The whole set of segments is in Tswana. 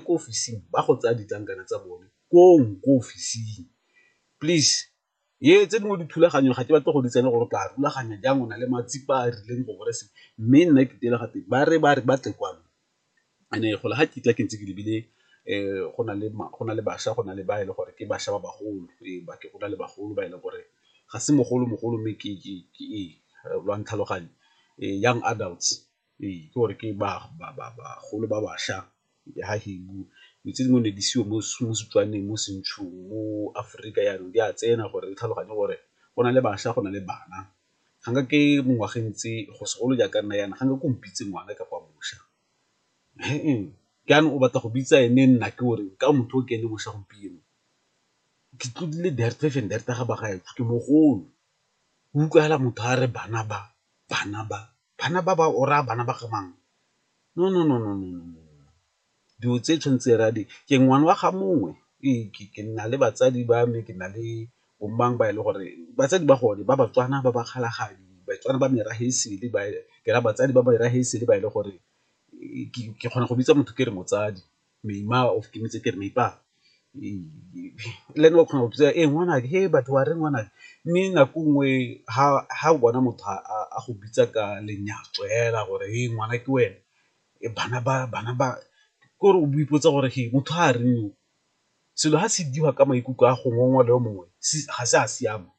ko ofising ba go tsaya ditlankana tsa bone koo ko ofising please ye tse dingwe dithulaganyo ga ke batle go di tsene gore ka rulaganya jang o na le matsipa a rileng go gore se mme nna ke tele gate ba re ba re ba tle kwano ene go le ga ke tla ke ntse ke lebile um go na le go na le bašwa go na le ba e le gore ke bašwa ba bagolo ee ba ke go na le bagolo ba e leng gore ga se mogolo mogolo mme ke ke ke ee lwa ntlhaloganya ee young adults. Ee, ke gore ke bagolo ba bašwa dilo tse dingwe ne di seyo mo Setswaneng, mo Sentshung, mo Aforika yanong di a tsena gore re tlhaloganye gore go na le bašwa, go na le bana. Ga nke ke mo ngwageng tse go segolo jaaka nna yana, ga nke ke o mpitse ngwana kapa mošwa jaanong o batla go bitsa ene nna ke o reng ka motho o ke ene mošwa gompieno. Ke tlodile ga bagolo, o utlwagala motho a re bana ba, bana ba. Bana ba ba o raya bana ba ga mang? No no no no no no no dilo tse tshwanetse re a di ke ngwana wa ga mongwe ee ke nna le batsadi ba me ke na le bo mang ba e le gore batsadi ba gone ba Batswana ba ba kgalagadi Batswana ba merafe e sele ba ke raya batsadi ba merafe e sele ba e le gore ke kgona go bitsa motho ke re motsadi. Meima of ke metse kere meipa le ene o kgona go botsa e ngwanake he batho wa reng ngwanake mme nako nngwe ha o bona motho a go bitsa ka lenyatso fela gore he ngwana ke wena bana ba bana ba ke gore o ipotsa gore he motho ga a reng yo, selo ga se dirwa ka maikutlo a gongwe ngwe le yo mongwe ga se a siama.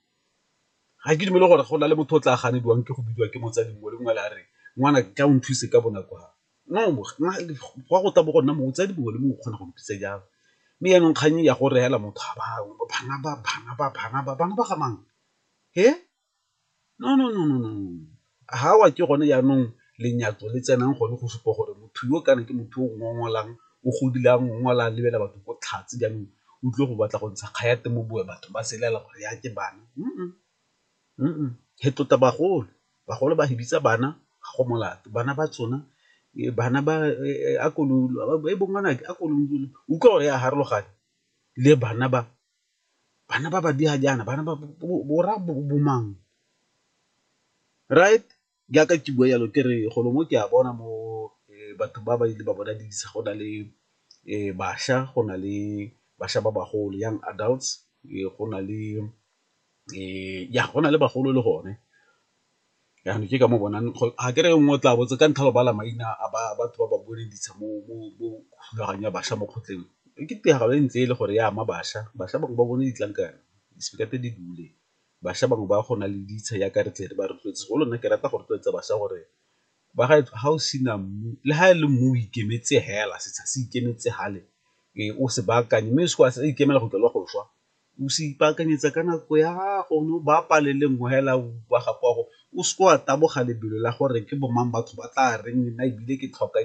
Ga ke dumele gore go na le motho o tla ganediwang ke go bidiwa ke motsadi mongwe le mongwe le a re ngwana ke a o nthuse ka bonako fa gwa go tla bo gonna motsadi mongwe le mongwe o kgona go mpitsa jalo, mme yanong kgang ya go reela motho ga bangwe bo bana ba bana ba bana ba bana ba ga mang he no no no no ha wa ke gone yanong lenyatso le tsenang gone go supa gore motho yo kana ke motho o ngongolang o godile a ngongola a lebela batho ko tlhatse jaanong o tlile go batla go ntsha kgayate mo bowe batho ba se lela gore ya ke bana . e tota bagolo, bagolo ba fedisa bana ga go molato, bana ba tsona bana ba a ko utlwa gore ya farologana le bana ba, bana ba ba jaana bana ba bo rra bo mang right. jaaka ke bua jalo ke re golo mo ke a bona mo batho ba ba ile ba bona didiriswa go na le bašwa, go na le bašwa ba bagolo young adults, go na le ya go na le bagolo le gone. Jaanong ke ka moo bonang ga ke re nngwe o tla botse ka ntlha ya go bala maina a batho ba ba boleditsha mo thulaganyong ya bašwa mo kgotleng ke tiragalo e ntse e le gore ya ama bašwa, bašwa bangwe ba bone ditlankana di-speaker tse di dule. bašwa bangwe ba go na le ditsha jaaka re tle re ba rotloetse segolo nna ke rata go rotloetsa bašwa gore ba ga ga o sena mmu le ga e le mmu o ikemetse fela setsha se ikemetse fale ee o se baakanye mme se a ikemela go tswa le go swa, o se ipaakanyetsa ka nako ya gago o ne o ba pale le nngwe fela wa gago wa go o seke wa taboga lebelo la gore ke bo mang batho ba tla reng nna ebile ke tlhoka .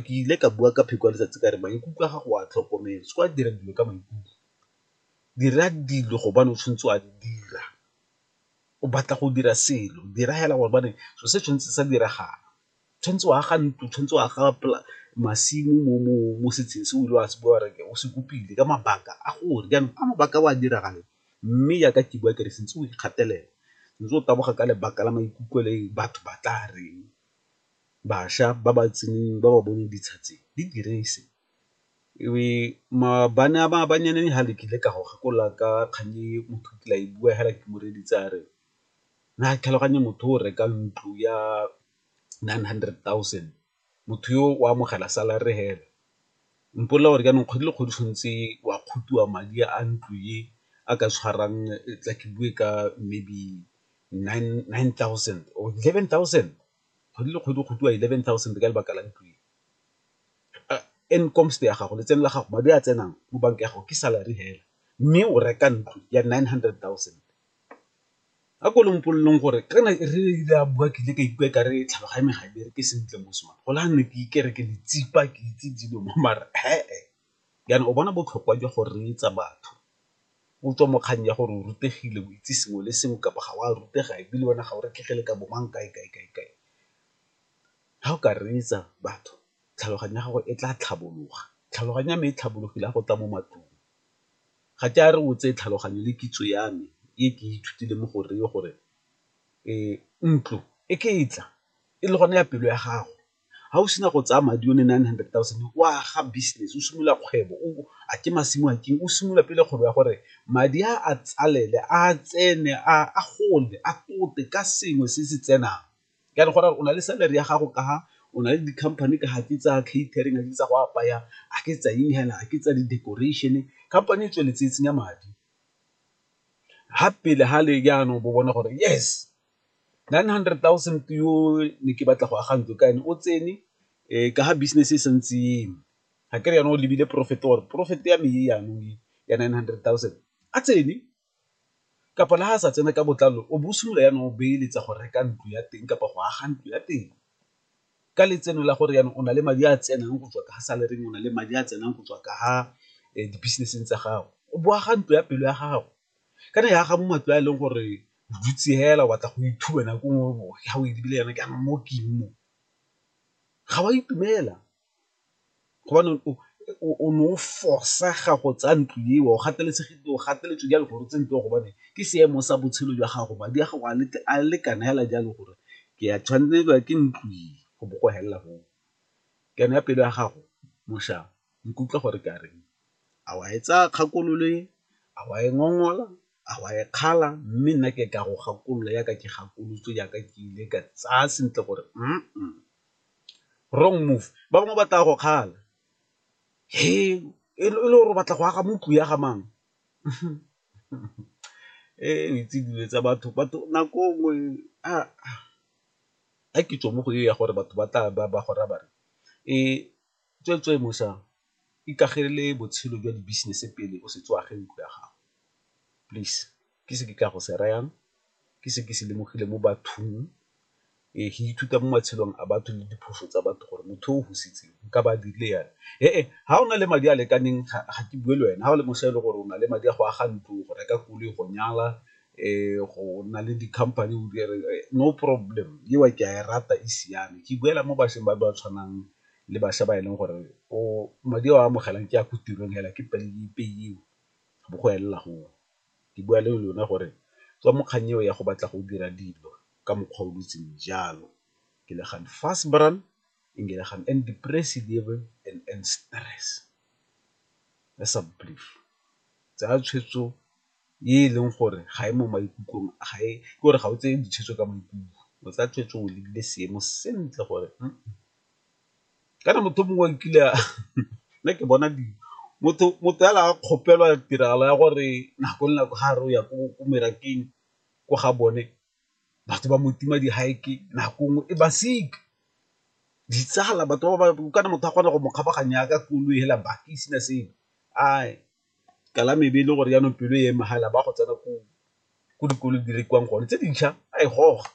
Ke ile ka bua ka pheko ya letsatsi ka re maikutlo a gago a tlhokomele, o seka wa dira dilo ka maikutlo, dira dilo gobane o tshwanetse wa di dira, o batla go dira selo dira fela gobane selo se tshwanetse sa diragala, o tshwanetse wa aga ntlo, o tshwanetse wa aga masimo mo setsheng se o ile wa se bua wa re o se kopile ka mabaka a gore, jaanong a mabaka a o a diragale mme jaaka ke bua ke re se ntse o ikgatelela, o ntse o taboga ka lebaka la maikutlo le batho ba tla reng, bašwa ba ba tseneng ba ba bone ditsha tse di direse e be bana ba banyane ha le kile ka go gakolola ka kgang e motho o kile a e bua hela ke mo reditse a re na tlhaloganye motho o reka ntlo ya nine hundred thousand motho yo o amogela salary hela, mpolelela gore jaanong kgwedi le kgwedi tshwanetse wa kgotiwa madi a ntlo e a ka tshwarang tla ke bue ka maybe nine thousand or eleven thousand Kgwedi le kgwedi go gotiwa eleven thousand ka lebaka la ntlo e. Incomes ya gago, letseno la gago, madi a tsenang mo banka ya gago ke salary fela, mme o reka ntlo ya nine hundred thousand. A ko lompoleleng gore kana re ile ra bua ke ile ka ikutlwa e kare tlhaloganyo ya me ga e bereke sentle mos man, go le jaanong ke ikere ke letsipa ke itse dilo mo mara . Jaanong o bona botlhokwa jwa go reetsa batho o tswa mo kgang ya gore o rutegile, o itse sengwe le sengwe kapa ga o a rutega e bile wena ga o retlhege le ka bo mang kae, kae, kae, kae. Ga o ka reetsa batho tlhaloganyo ya gago e tla tlhabologa, tlhaloganyo ya me e tlhabologile ga go tla mo matlong. Ga ke a re o tseye tlhaloganyo le kitso ya me e ke ithutile mo go reye gore ntlo e ke e tla e le gone ya pelo ya gago ga o sena go tsaya madi o ne nine hundred thousand o a ga business o simolola kgwebo o a ke masimo a keng o simolola pele kgwebo ya gore madi a a tsalele a tsene a gole a tote ka sengwe se se tsenang ka gore o na le salary ya gago ka ga o na le di-company ka ga ke tsa catering a ke tsa go apaya a ke tsa eng fela a ke tsa di-decoration company e tsweletse e tsenya madi ga pele ga le jaanong bo bone gore yes. Nine hundred thousand yo ne ke batla go aga ntlo ka ene o tsene ka ga business e santse e eme, ga ke re jaanong o lebile profit or profit ya me e jaanong e ya nine hundred thousand a tsene kapa le ga a sa tsena ka botlalo o bo o simolola jaanong o beeletsa go reka ntlo ya teng kapa go aga ntlo ya teng ka letseno la gore jaanong o na le madi a tsenang go tswa ka salary o na le madi a tsenang go tswa ka ga di-business-eng tsa gago o bo aga ntlo ya pelo ya gago. ka re e aga mo matlo a e leng gore o dutse fela o batla go ithuba nako e nngwe ga o lebile yana ke jaanong mo ke eng mo, ga wa itumela gobane o ne o fosega go tsaya ntlo eo o gateletsegile o gateletswe jalo gore o tse ntlo eo gobane ke seemo sa botshelo jwa gago madi a gago a lekana fela jalo gore ke a tshwanelwa ke ntlo e go bo go felela foo, ke yone ya pelo ya gago mošaa. Nkutlwa gore ke a reng? A wa e tsaya kgakololo e, a wa e ngongola, a wa e kgala mme nna ke ka go gakolola yaka ke gakolotswe yaka ke ile ka tsaya sentle gore wrong move. Ba bangwe ba tla go kgala he e le gore o batla go aga mo tlung ya ga mang o itse dilo tsa batho, batho nako nngwe a ke tswe mo go e ya gore batho ba tla ba go raya ba re Tsweetswee mosa, ikagelele botshelo jwa di-business pele o setse o age ntlo ya gago. Please, ke se ke ka go se rayang, ke se ke se lemogileng mo bathong. Ee, ke ithuta mo matshelong a batho le diphoso tsa batho gore motho o fositseng nka ba a dirile jang. He-e, ha o na le madi a lekaneng ga ke bue le wena, ha o le mosa e le gore o na le madi a go aga ntlo, go reka koloi, go nyala, go nna le di-company no problem, eo ke a e rata e siame. Ke buela mo bašweng ba ba tshwanang le bašwa ba e leng gore madi a o a amogelang ke a ko tirong fela ke pay-u go bo go elela goo. Ke bua le lona gore tswa mo kgannyeng eo ya go batla go dira dilo ka mokgwa o dutseng jalo, ke le gaan vryspral en julle gaan in depressie lewe en in stress asseblief tsaya tshwetso e e leng gore ga e mo maikutlong ga e ke gore ga o tseye ditshwetso ka maikutlo o tsaya tshwetso o lebile seemo sentle gore kana motho mongwe o kile a nna ke bona di motho fela a kgopelwa tiragalo ya gore nako le nako ga a re o ya ko merakeng ko ga bone batho ba mo tima di nako nngwe e ba sick, ditsala batho ba ba kana motho a kgona go mo kgabaganya yaka koloi hela baka e sena sepe . ka la maybe e le gore jaanong pelo e eme fela ba go tsena ko dikolong di rekiwang gone tse dintšha a e goga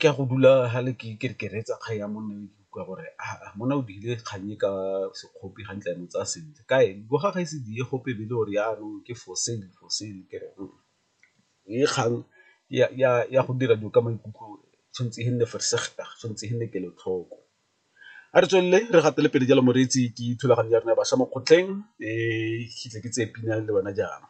ke a go dula fale ke re ke reetsa kgang ya monna yo ke utlwa gore aa monna o dirile kgang e ka sekgopi ga ntla mo tsaya sentle kae bo ga ga e se diye gope be le gore jaanong ke for sale for sale ke re e kgang ya go dira dilo ka maikutlo tshwanetse e nne tshwanetse e nne kelotlhoko. A re tswelele re gatele pele jalo moreetsi ke thulaganyo ya rona ya bašwa mo kgotleng ke tle ke tseye pina le wena jaana.